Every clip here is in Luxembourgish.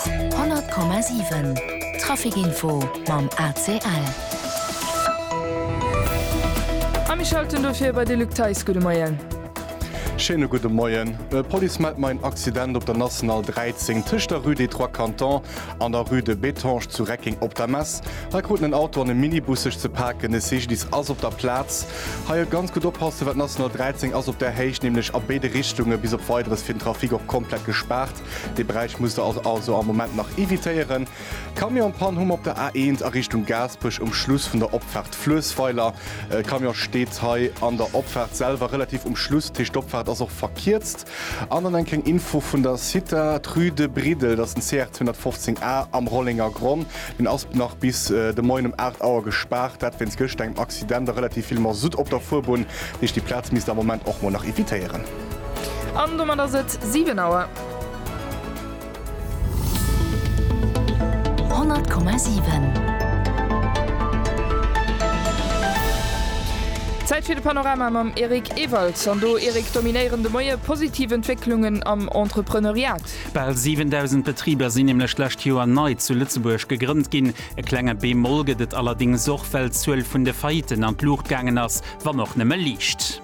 100,7 Trafic info mam ACL. A mir schalten dofir bei de Luc Theis. Gudde Moien. Schéine gudde Moien. D'Police mellt mer een Accident op der National 13 tëscht der Rue des Trois Cantons an der Rue de Bettange zu Recking op der Mess. Hei kruten en Auto an e Minibus sech ze paken. E Cyclist ass op der Plaz. Hei ëllt ganz gutt oppassen, well d'National 13 ass op där Héicht nämlech a béide Richtunge bis op Weideres fir den Trafic och komplett gespaart. Dee Beräich musst der also am Moment nach evitéieren. D'Camionspann hu mer op der A1 a Richtung Gaasperech um Schluss vun der Opfaart Fluessweiler. E Camion steet hei an der Opfaart selwer relativ um Schluss, dat heescht d'Opfaart ass och verkierzt. An dann enk eng Info vun der Cita, d'Rue de Briddel, dat ass den CR 215 A am Rollengergronn, deen ass nach bis de Moien um 8 Auer gespaart, dat wéinst gëschter engem Accident a relativ vill Masutt op der Fuerbunn, dat heescht déi Plaz misst der am Moment och mol nach evitéieren. An domat ass et 7 Auer. Zäit fir de Panorama mam Eric Ewald. An do, Eric, dominéieren de Moie positiv Entwécklungen am Entrepreneuriat. Bal 7.000 Betriber sinn nämlech d'lescht Joer nei zu Lëtzebuerg gegrënnt ginn. E klenge Bémol gëtt et allerdéngs och, well d'Zuel vun de Faillitten an d'Luucht gaangen ass, wann och nëmme liicht.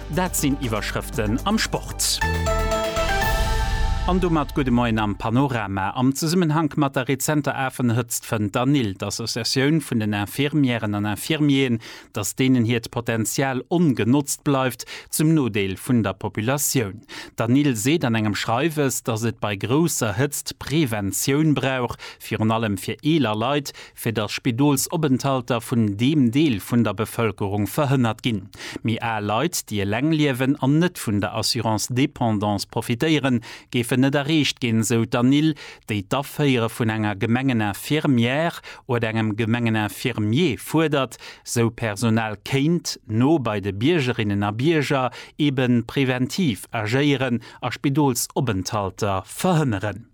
Dat sinn Iwwerschrëften am Sport. An domat gudde Moien am Panorama. Am Zesummenhank mat der rezenter Afenhëtzt fënnt d'ANIL, d'Associatioun vun den Infirmièren an Infirmieren, datt deenen hiert Potenzial ongenotzt bleift, zum Nodeel vun der Populatioun. D'ANIL seet an engem Schreiwes, datt et bei grousser Hëtzt Preventioun brauch, virun allem fir eeler Leit, fir datt Spidolsopenthalter vun deem Deel vun der Bevëlkerung verhënnert ginn, méi al Leit, déi eleng liewen an net vun der Assurance dépendance profitéieren, géifen net erreecht ginn, esou d'Anil, déi d'Aféiere vun enger Gemengeninfirmière oder engem Gemengeninfirmier fuerdert, sou d'Personal kéint no bei de Biergerinnen a Bierger eeben preventiv agéieren a Spidolsopenthalter verhënneren.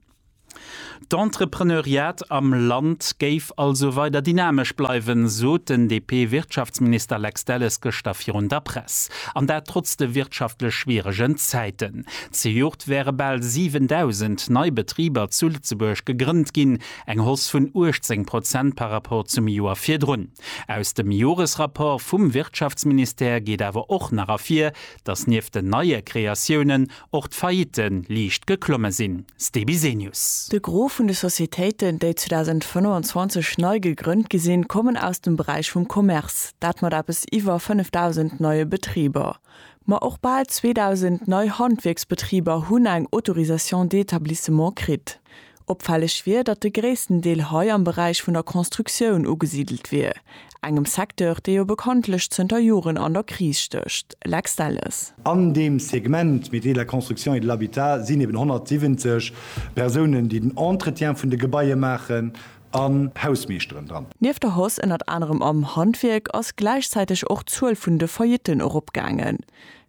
D'Entrepreneuriat am Land géif also weider dynamesch bleiwen, sot den DP-Wirtschaftsminister Lex Delles gëschter virun der Press. An dat trotz de wirtschaftlech schwieregen Zäiten. Zejoert wäre bal 7.000 nei Betriber zu Lëtzebuerg gegrënnt ginn, eng Hausse vun 18 Prozent par rapport zum Joer virdrun. Aus dem Joresrapport vum Wirtschaftsministère geet awer och nach ervir, datt nieft den neie Kreatiounen och d'Faillitte liicht geklomme sinn. Ste Bisenius. De Gros vun de Societéiten, déi 2025 nei gegrënnt gi sinn, kommen aus dem Beräich vum Commerce, dat mat eppes iwwer 5.000 neie Betriber. Ma och bal 2.000 nei Handwierksbetriber hunn eng Autorisation d'établissement kritt. Opfälleg wier, datt de gréissten Deel hei am Beräich vun der Constructioun ugesidelt wier, engem Secteur, dee jo bekanntlech zënter Joren an der Kris stécht. Lex Delles. An deem Segment Métiers de la construction et de l'habitat sinn eben 170 Persounen, déi den Entretien vun de Gebaie maachen, an Hausmeeschteren dran. Nieft der Hausse ënnert anerem am Handwierk ass gläichzäiteg och d'Zuel vun de Faillitten eropgaangen.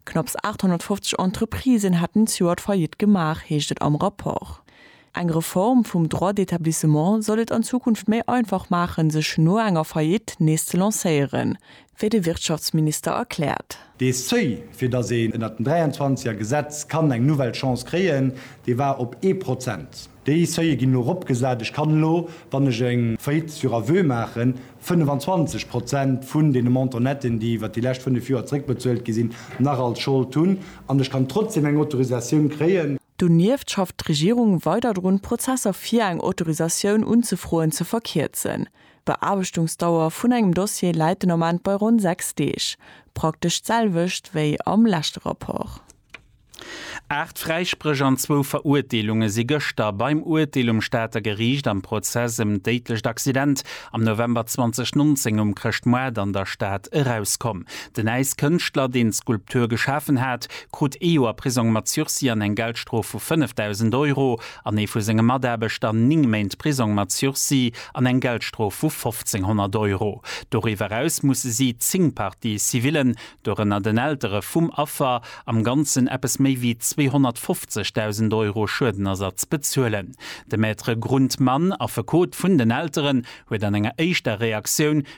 Knapps 850 Entreprisen hätten d'Joert Faillite gemaach, heescht et am Rapport. Eng Reform vum Droit d'établissement soll et an Zukunft méi einfach maachen, sech no enger Faillite nees ze lancéieren, wéi de Wirtschaftsminister erkläert. Dee Seuil, fir datt een ënnert dem 23 er Gesetz kann eng nouvelle Chance kréien, dee war op ee Prozent. Déi Seuile ginn elo eropgesat. Ech kann elo, wann ech eng Faillite sur aveu maachen, 25 Prozent vun deene Montant netten, déi iwwer déi lescht fënnef Joer zeréckbezuelt gi sinn, nach als Schold hunn an ech kann trotzdeem eng Autorisatioun kréien. Donieft schafft d'Regierung weider drun, Prozesser fir eng Autorisatioun unzefroen ze verkierzen. D'Beaarbechtungsdauer vun engem Dossier läit den Ament bei ronn 6 Deeg, praktesch d'selwecht wéi am leschte Rapport. Aacht Fräispréch an zwou Verurteelunge si gëschter beim Urteel um Stater Geriicht am Prozess ëm d'déidlecht Accident am November 2019 um Chrëschtmoart an der Stad erauskomm. Den Äiskënschtler, deen d'Skulptur geschafen hat, krut ee Joer Prisong mat Sursis an eng Geldstrof vu 5.000 Euro an ee vu senge Mataarbechter ning Méint Prisong mat Sursis an eng Geldstrof vu 1.500 Euro. Doriwwer eraus musse si, zéng Parties civillen, dorënner den Eltere vum Affer, am Ganzen eppes méi wéi 250.000 Euro Schuedenersatz bezuelen. De Maître Grundmann, Affekot vun den Elteren, huet an enger éischter Reaktioun,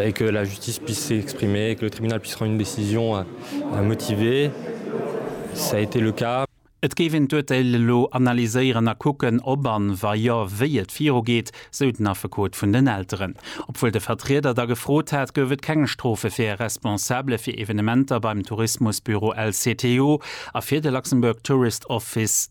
Et que la justice puisse s'exprimer et que le tribunal puisse rendre une décision motivée, ça a été le cas. Et géif een d'Urteil elo analyséieren a kucken, ob an, wa jo, wéi et virugeet, sou den Affekot vun den Elteren. Obwuel de Vertrieder da gefrot hat, gouf et keng Strofe fir e Responsabele fir Evenementer beim Tourismusbüro LCTO a fir de Luxembourg Tourist Office.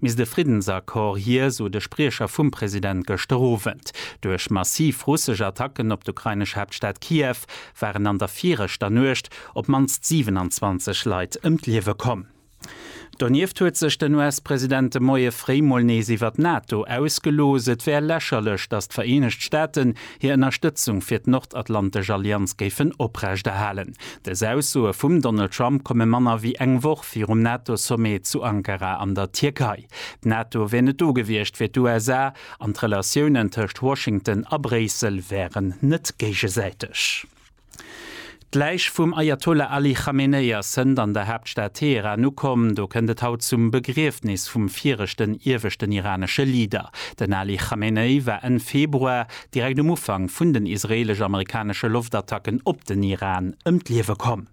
misst e Friddensaccord hier, sou de Spriecher vum President gëschter Owend. Duerch massiv russesch Attacken op d'ukrainesch Haaptstad Kiew waren an der viregter Nuecht op d'mannst 27 Leit ëm d'Liewe komm. Donieft huet sech den US-President de Moie fréi mol nees iwwer d'NATO ausgelooss. Et wär lächerlech, datt d'Vereenegt Staaten hir Ënnerstëtzung fir d'Nordatlantesch Allianz géifen oprechterhalen. Dës Aussoe vum Donald Trump komme manner wéi eng Woch, virum NATO-Sommet zu Ankara an der Tierkei. D'NATO wier net do gewiescht fir d'USA an d'Relatiounen tëscht Washington a Bréissel wären net géigesäiteg. D'Läich vum Ajatollah Ali Khamenei ass hënt an der Haaptstad Teheran ukomm. Do kënnt et haut zum Begriefnis vum viregten ieweschten iranesche Leader. Den Ali Khamenei war Enn Februar, direkt um Ufank vun den israeelesch-amerikanesche Loftattacken op den Iran, ëm d'Liewe komm.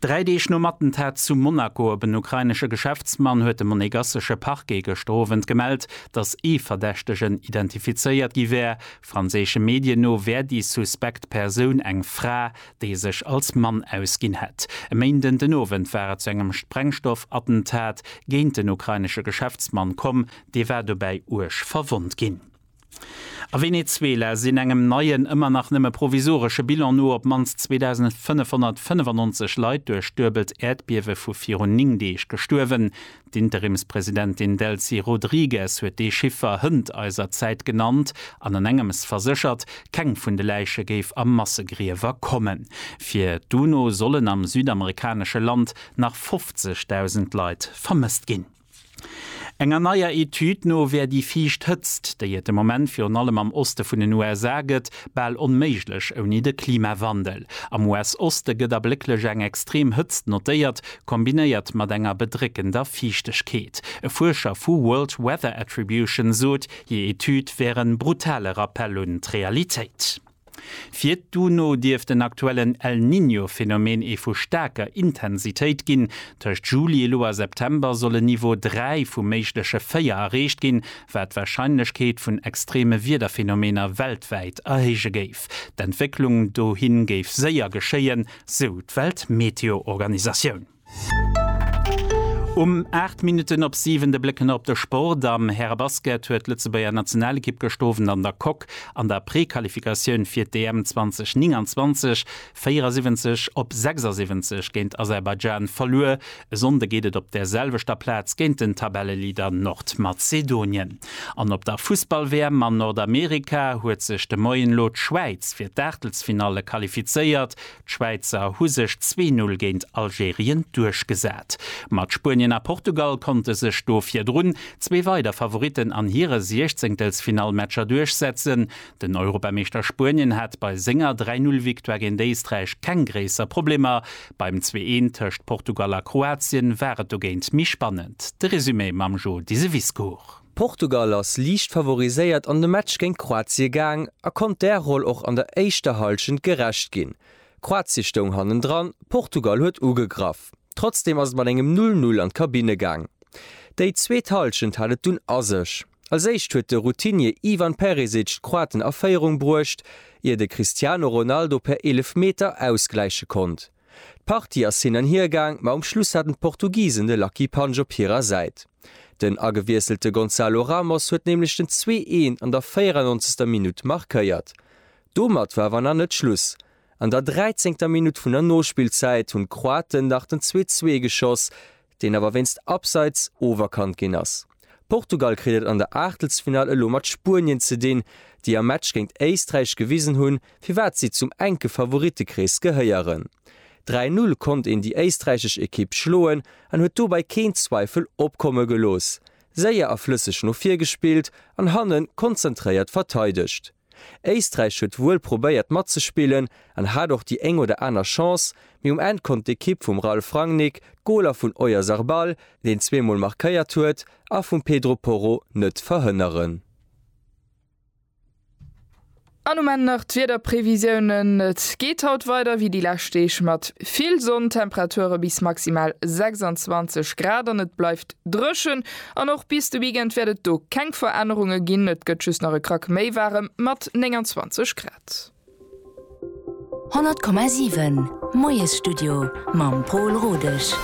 Dräi Deeg nom Attentat zu Monaco op en ukrainesche Geschäftsmann huet de monegassesche Parquet gëschter Owend gemellt, datt ee Verdächtegen identifizéiert gi wär. Franséische Medien no wär déi suspekt Persoun eng Fra, déi sech als Mann ausginn hätt. E Méinden den Owend war et zu engem Sprengstoffattentat géint den ukrainesche Geschäftsmann komm, dee war dobäi uerg verwonnt ginn. A Venezuela sinn engem neien, ëmmer nach nëmme provisoresche Bilan no, op d'mannst 2.595 Leit duerch duebelt Äerdbiewe vu virun 9 Deeg gestuerwen. D'Interimspresidentin Delcy Rodrigues huet dee Chiffer hënt eiser Zäit genannt an an engems verséchert, keng vun de Läiche géif a Massegriewer kommen. Fir d'UNO sollen am südamerikanesche Land nach 50.000 Leit vermësst ginn. Enger neier Etüd no wär déi viischt Hëtzt, déi et de Moment virun allem am Oste vun den USA gëtt, bal onméiglech ouni de Klimawandel. Am US-Oste gëtt ablécklech eng extrem Hëtzt notéiert, kombinéiert mat enger bedréckender Fiichtegkeet. E Fuerscher vu World Weather Attribution sot, hir Etüd wär e brutale Rappell un d'Realitéit. Fir d'UNO dierft den aktuellen El Niño Phenomen ee vu staarker Intensitéit ginn. Tëscht Juli elo a September soll en Niveau 3 vu méigleche 4 erreecht ginn, wat d'Warscheinlechkeet vun extreme Wiederphenomener weltwäit erhéije géif. D'Entwécklung dohin géif séier geschéien, sou d'Weltmeteoorganisatioun. Um 8 Minutten op 7 de Bléck ënner op de Sport. Am Härebasket huet d'Lëtzebuerger Nationalekipp gëscht Owend an der Coque an der Prequalifikatioun fir d'EM 2029 74 op 76 géint Aserbaidschan verluer. E Sonnde geet et op der selwechter Plaz géint den Tabelleleader Nordmazedonien. An op der Fussball-WM an Nordamerika huet sech de Moien elo d'Schwäiz fir d'Aachtelsfinalle qualifizéiert. D'Schwäizer hu sech zwee Null géint Algerien duerchgesat. Mat Spuenien a Portugal konnte sech do virdrun zwee weider Favoritten an hire Siechzéngtelsfinallmatcher duerchsetzen. Den Europameeschter Spuenien hat bei senger Dräi Null Victoire géint Éisträich keng gréisser Problemer. Beim Zwee Een tëscht Portugal a Kroatien war et dogéint méi spannend. De Resumé mam Joe Diseviscourt. Portugal ass liicht favoriséiert an de Match géint Kroatie gaang a konnt där Roll och an der éischter Hallschent gerecht ginn. Kroatie stoung hannendran, Portugal huet ugegraff. Trotzdeem ass et mat engem 'Null Null' an d'Kabinne gaang. Déi zweet Hallschent hat et dunn a sech. Als éischt huet de Routinier Ivan Perisic d'Kroaten a Féierung bruecht, ier de Cristiano Ronaldo per Eelefmeter ausgläiche konnt. D'Partie ass hin an hier gaang, ma um Schluss haten d'Portugisen de Lucky Punch op hirer Säit. Den agewiesselte Gonzalo Ramos huet nämlech den zwee Een an der 94. Minutt markéiert. Domat war awer nach net Schluss. An der dräizéngter Minutt vun der Nospillzäit hunn d'Kroaten nach den 2, 2 geschoss, deen awer wéinst Abseits oferkannt ginn ass. Portugal kritt et an der Aachtelsfinall elo mat Spuenien ze dinn, déi am Match géint Éisträich gewisen hunn, firwat si zum enke Favorittekrees gehéieren. 3-Null konnt een déi éisträichesch Ekipp schloen an huet dobäi keen Zweifel opkomme gelooss. Séier a flësseg no vir gespillt an hannen konzentréiert verteidegt. Éisträich huet wuel probéiert matzespillen an hat och déi éng oder aner Chance, mee um Enn konnt d'Ekipp vum Ralf Rangnick d'Goler vun Oyarzarbal, deen zwee Mol markéiert huet, a vum Pedro Porro net verhënneren. An um Enn nach d'Wiederprevisiounen, Et geet haut weider wéi déi lescht Deeg mat vill Sonn, Temperature bis maximal 26 Grad an et bleift Dréchen an och bis de Weekend wäert et do keng Verännerunge ginn, et gëtt just nach e Krack méi waarem mat 29 Grad. 100,7 Moiesstudio mam Pol Rodesch.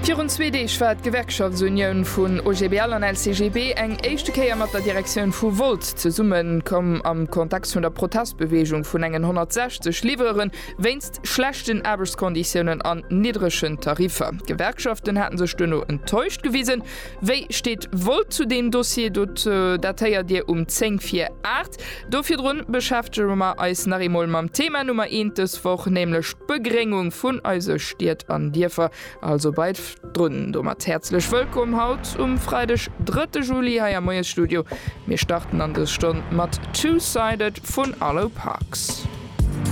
Virun zwee Deeg war d'Gewerkschaftsunioun vun OGBL an LCGB eng éischte Kéier mat der Direktioun vu Volt zesummen komm am Kontext vun der Protestbeweegung vun engen 160 Livreuren wéinst schlechten Aarbechtskonditiounen an niddregen Tariffer. D'Gewerkschaften haten sech duerno enttäuscht gewisen. Wéi steet Volt zu deem Dossier? Dot dat héiert Dir um 10 vir 8. Do virdrun beschäftege mer eis nach eemol mam Thema Nummer eent dës Woch, nämlech d'Begréngung vun eise Stied an Dierfer. Also bleift drun! Domat häerzlech wëllkomm haut um Freideg, drëtte Juli hei am Moiesstudio. Mir starten an dës Stonn mat Two-Sided vun Arlo Parks.